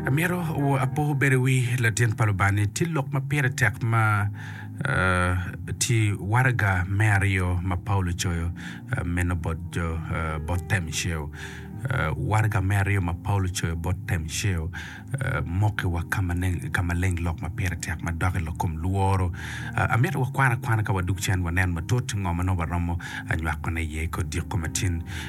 Amito apoko bedo i wi latin pa Lubanga-ni. Tye lok ma pire tek ma tye waraga me aryo ma Paulo ocoyo meno bot Temceo. Waraga me aryo ma Paulo ocoyo bot Temceo mokiwa ka maleng lok ma pire tek ma doki lok kom lworo. Amito wakwan akwana ka wadok cen wanen matut ngo ma nongo waromo nywakone iye i Kodiko ma tin.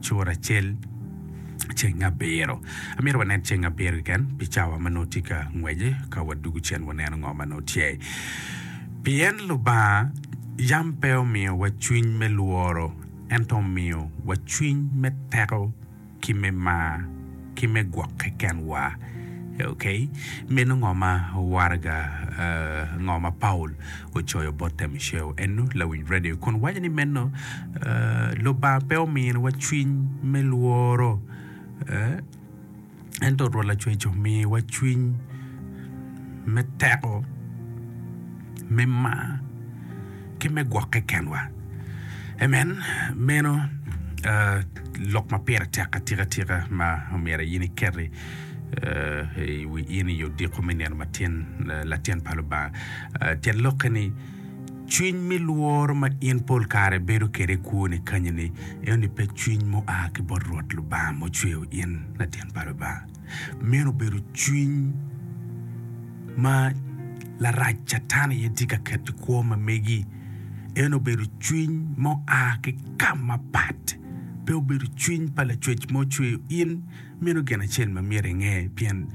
cura acel ceng abiro. Amito wanen ceng abiro keken pi cawa ma nongo tye ka ngwece ka wadugu cen waneno ngo ma nongo tye. Pien Lubanga yam pe omiyowa cwiny me lworo, ento omiyowa cwiny me teko, ki me mar, ki me gwokke kenwa. Ok, meno ngo ma waraga ngo ma Paulo ocoyo bot Temiceo? Eno lawic redio kun waco ni meno, Lubanga pe ominiwa cwiny me lworo, ento Rwot Lacwec omiwa cwiny me teko. me mar ki me gwokke kenwa. Amen. Meno lok ma pire tek atika tika ma omyero in iketi i wi in i odiko me nino matin latin pa Lubanga. Tyen lokke ni cwiny me lworo ma in pol kare bedo kwede i kwoni kanyeni, enoni pe cwiny mua ki bot Rwot Lubanga mucweyo in latin pa Lubanga. Meno obedo cwiny ma larac Catan aye tye ka keto i kwo ma megi. En obedo cwiny ma oa ki ka mapat. Pe obedo cwiny pa Lacwec ma ocweyo in. Meno gin acel ma myero inge, pien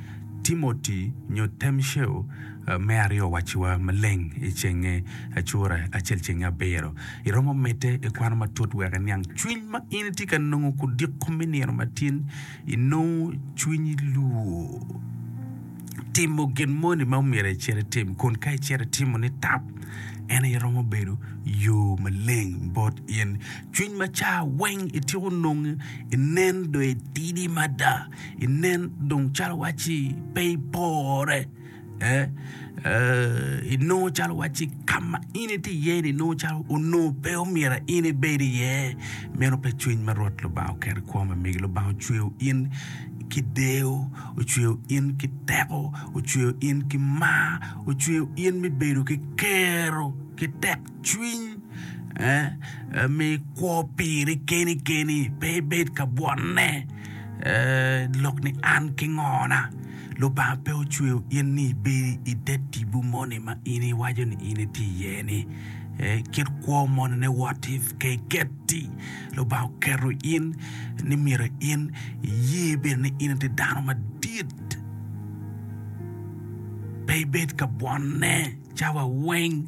Timoti nyo Temceo me aryo owacciwa maleng i cenge Acura acel cenge abiro. Iromo medde i kwano matut wek iniang cwiny ma in itye ka nongo kudiko me nino matin. inongo cwinyi lwor timo gin moni ma omyero icit itim kun ka icito itimo ni tap en aye romo bedo yo maleng bot in cwiny macar weng ityeko nonge inen dong itidi mada inen dong calo waci pe ipore. inongo calo wacci ka ma in itye iye-ni nongo calo onongo pe omyero in ibed iye. Meno pe cwiny ma Rwot Lubanga oketo i koma, megi Lubanga ocweyo in ki deyo, ocweyo in ki teko, ocweyo in ki mar, ocweyo in me bedo ki kero ki tekcwiny ma ikwo piri keni keni pe ibed ka bwotne lok ni an ki ngona. Lubanga pe ocweyo in ni ibedi i te tipo moni ma in iwaco ni in itye iye-ni. Kit kwo monine, what if, ka iketi, Lubanga oketo in ni myero in iye bene ni in itye dano madit, pe ibed ka bwonne cawa weng.